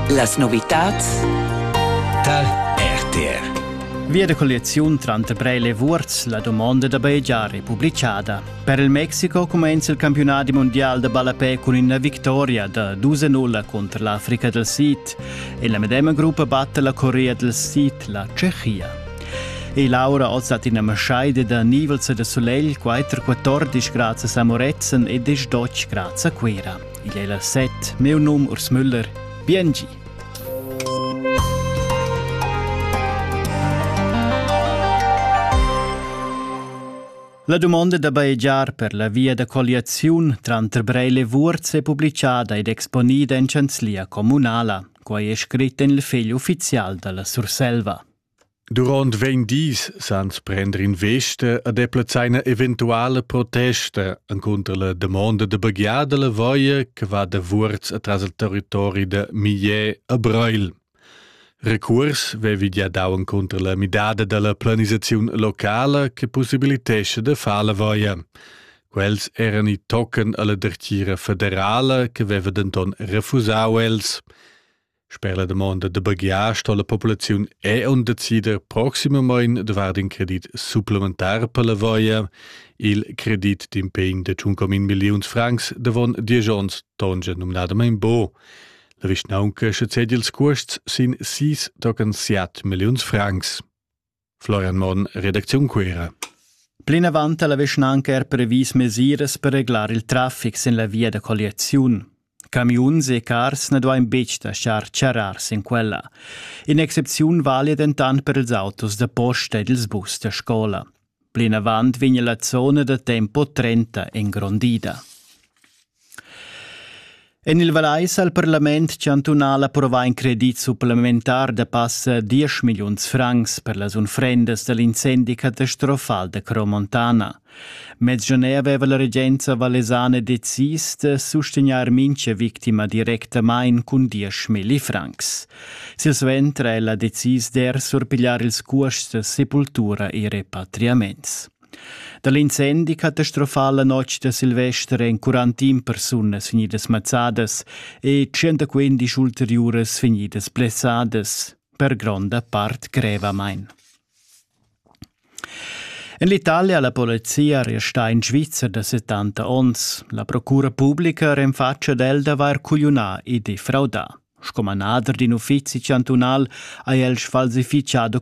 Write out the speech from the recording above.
Las novitads dal RTR Via de colliaziun tranter Breil e Vuorz, la domanda da bajegiar è publicada. Per il Mexiko cumenza il campionat mondial da ballapè cun ina victoria da 2-0 contro l'Africa del Sid e la medema gruppa batte la Corea del Sid, la Tschechia. E Laura oz hat in Maschaide da nivelza de solegl 4-14 grazie a Moretzen e 10 doc grazie a Quera. Igl ei las set, miu num Urs Müller. Biengi! La domanda da baegiar per la via da colliaziun tranter Breil e Vuorz è publicada ed exponida in chanzlia communala. Quai è scrit en il fegl uffizial dalla Surselva. Duront vegn dis sans prender investa a deplazar ina eventuala protesta encunter la damonda da baghiada la voia che va da Vuorz atras il territori da Mier a Breil. Recuors vevi gia dau encunter la midada dalla planisaziun locala che possibilitesce da far la voia. Quels eran i tocken alla dertgira federala che veva denton refusau els. Sper la domanda da baghiar sto la populaziun è on decider proximamain davart in credit supplementar per la voia. Il credit d'impegn de 1,1 milliuns francs davon 10 onns tongia nominadamain bo. La vischnaunca sche ced ils cuosts sin 6,7 milliuns francs. Florian Monn, redacziun Cuera. Plinavant ha la vischnanca er previs mesiras per reglar il traffic sin la via da colliaziun. Camiuns e cars na duain betg laschar charrar sin quella. In'excepziun vali dentant per ils autos da posta ed ils bus da scola. Plinavant vegn la zona da tempo 30 engrondida. En il Vallais ha il parlament chantunal approvà in credit supplementar da passa 10 milliuns francs per las unfrendas da l'incendi catastrofal da Cromontana. Mez gener aveva la regenza vallesana decis da sustegnair mincha victima directamain cun 10.000 francs. Silsuenter è ella decis d'er surpigliar ils cuosts da sepultura e repatriaments. Da l'incendi catastrofal la notg da Silvester èn 41 persunas vegnidas mazzadas e 115 ulteriuras vegnidas blessadas, per gronda part grevamain. En l'Italia ha la polizia restà in Svizzer da 70 onns. La procura publica renfatscha ad el d'avair cugliunà e defraudà. Sco manader d'in uffizi chantunal ha el sfalsifichado